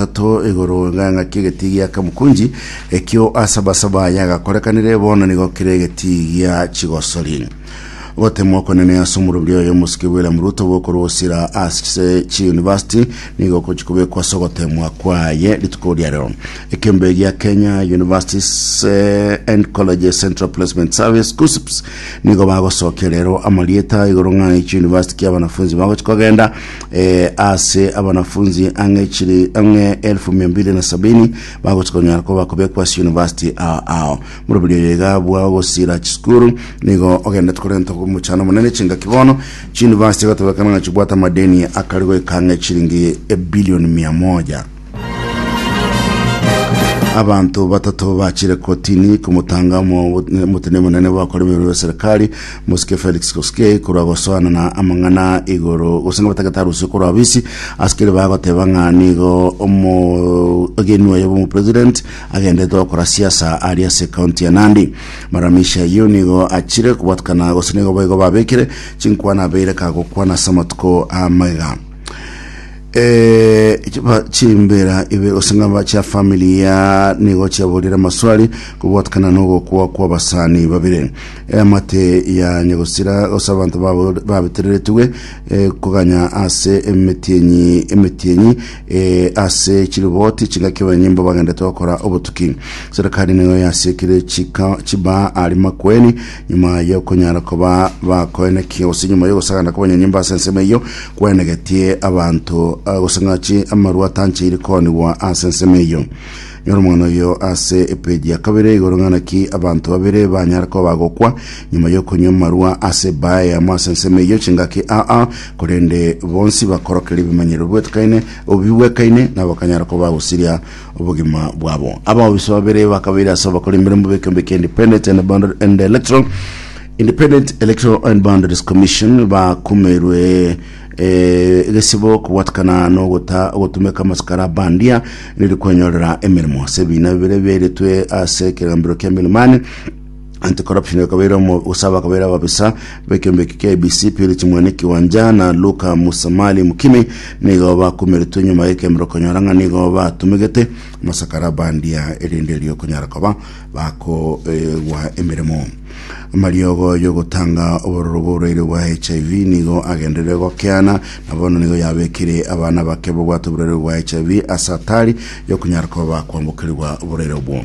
Ato igoro ng'ang'aki egetii gia Kamukunji, ekio asabasaba aye agakorekanire, bono nigo kire egetii gia Chigosori. Gotemwa okonene ase omorobio oyo omosike William Ruto bw'okorwa gosira ase chiunivasiti nigo gochia kobekwa ase ogotemwa kwaye rituko ria rero. Ekembe gia Kenya Universities eh, and Colleges Central Placement Service KUCCPS nigo bagosokia rero amarieta igoro ng'ang'aki chiunivasiti kia abanafunzi bagochia kogenda eh, ase abanafunzi ang'e chiri ang'e elfu mia mbili na sabini bagochia konyara koba kobekwa ase university ao ao moroberio oyo iga bwa ogosira chisukuru nigo ogendete korenta omochano monene chingaki bono chiuniversity igatobekana ng'a chibwate amadeni akari goika ang'e chiringi ebilioni mia moja Abanto batato bachire kotini komotanga omotene monene bwakore bweru bwa serikali mosike Felix Koskei korwa gosoana na amang'ana igoro gose batagete arusi korwa abisi asikere bagoteba ng'a nigo omogeni oye bomo president agendete gokora siasa ari ase county ya Nandi maramisha yo nigo achire kobwatukana gose nigo boigo babekire chinkwana abeire kagokwana ase amatuko amaiga Eeh chiba chimbera ibe gose ng'aba chia family ya nigo chiaborire amaswali kobwatekana nogokwa kwabasani babire eamate ya nyagosira gose abanto babo- babetereretwe eh, koganya ase emetienyi emetienyi eh, ase chiriboti chingaki abanyimbo bagendete gokora obotuki serikali nigo yasiekire chika chiba ari makweni Nyuma y'okonyara koba bakoenekia, gose nyuma y'ogosaganda kw'abanyanyimba ase ensemo eyio, kwenegetie abanto ah, gose ng'achi amarwa atancheire koonigwa ase ensemo eyio. Nyora omong'ana oyo ase epeji ya kabere igoro ng'a naki abanto babere banyare koba bagokwa nyuma y'okonywa amarwa ase ebaa eyamo ase ensemo eyio chingaki aa korende bonsi bakorokera ebimanyerero bibwetekaine bibwekaine nabo bakanyara koba bagosiria obogima bwabo. Abaofiso babere bakabeire ase abakora emeremo b'ekeombe kia Independent and Boundary and Electoral Independent Electoral and Boundaries Commission bakumerwe eh, egesibo kobwatikana n'ogota ogotumeka amasikara abandia neri kwenyorera emeremo ase ebiina bibere biairetwe ase ekegambero kia Milimani Anti-Corruption bakabeire omo- gose bakabeire ababisa b'ekeombe eke kia ABC, Purity Mwene Kiwanja na Luka Musamali Mukimi nigo bakumeretwe nyuma y'ekemerero konyora ng'a nigo batumegete amasakara bandia erinde riokonyara koba bakoegwa emeremo. Amariogo y'ogotanga obororo bw'oboraire bwa HIV nigo agenderere gokeana na bono nigo yabekire abana bake bobwate oboraire bwa HIV ase atari y'okonyara koba bakwambokerigwa oboraire obwo.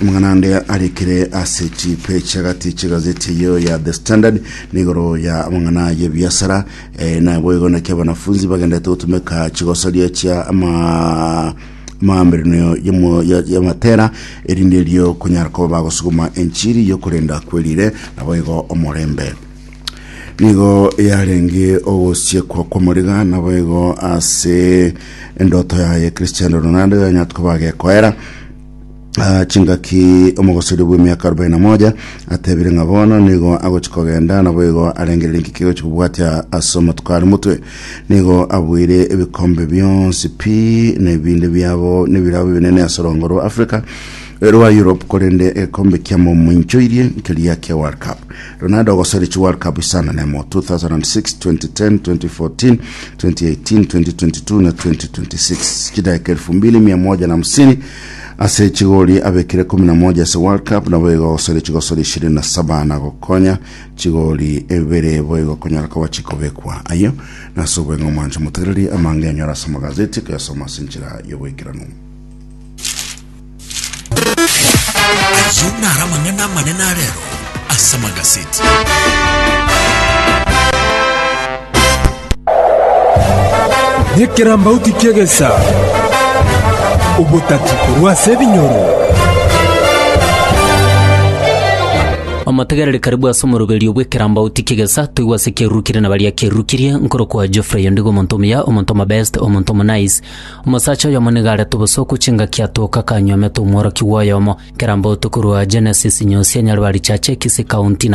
Amang'ana ande arekire ase chipeji chi'agati chi'egazeti eyio ya The Standard n'igoro ya amang'ana y'ebiasara eh, naboigo naki abanafunzi bagendete gotumeka chigosoria chia ama amaamberanio y'omo- ya- y'amatera erinde erio konyara koba bagosuguma enchiri y'okorenda kwerire naboigo omorembe nigo yarenge ogosiekwa kw'omoriga naboigo ase endoto yaye Cristiano Ronaldo yanyatuka bagekoera Ah, chingaki omogosori bw'emiaka arobaini na moja atebire ng'a bono nigo agochi kogenda naboigo arengererie nki kigochi kobwatia ase omatuko are motwe nigo abuire ebikombe bionsi pi na ebinde biabo nebirabo ebinene ase orongo rwa africa eh, rwa europe korende egekombe kiamo moinchoirie nkeria kia world cup Ronaldo ogosorechwa World Cup isano na emo, 2006, 2010, 2014, 2018, 2022 na 2026. Chidaeka elfu mbili mia moja na hamsini ase chigori abekire kumi na moja ase World Cup naboigo ogosorechwa gosori ishirini na saba na gokonya chigori ebere boigo konyora koba chikobekwa. Ayio nase obweng'e omwancho motegereri amang'enyo ase amagazeti koyasoma ase enchera y'oboikeranu. Ayio naro amang'ana amanene a rero ase amagaseti. Nekerambauti ki'egesa, obotati korwa ase ebinyoro. Omotegereri karibu ase omoroberio bw'ekerambauti ki'egesa, toigwe ase kiarurukirie na baria kiarurukirie, nkorokwa Geoffrey Ondigo omonto omuya, omonto omobest, omonto omonice, Omosacha oyomo nigo arete obosooku chingaki atooke akanyuomete omworokigwa oyomo kera botuko rwa Genesis inye osianyare barichache ekisi ekaunti na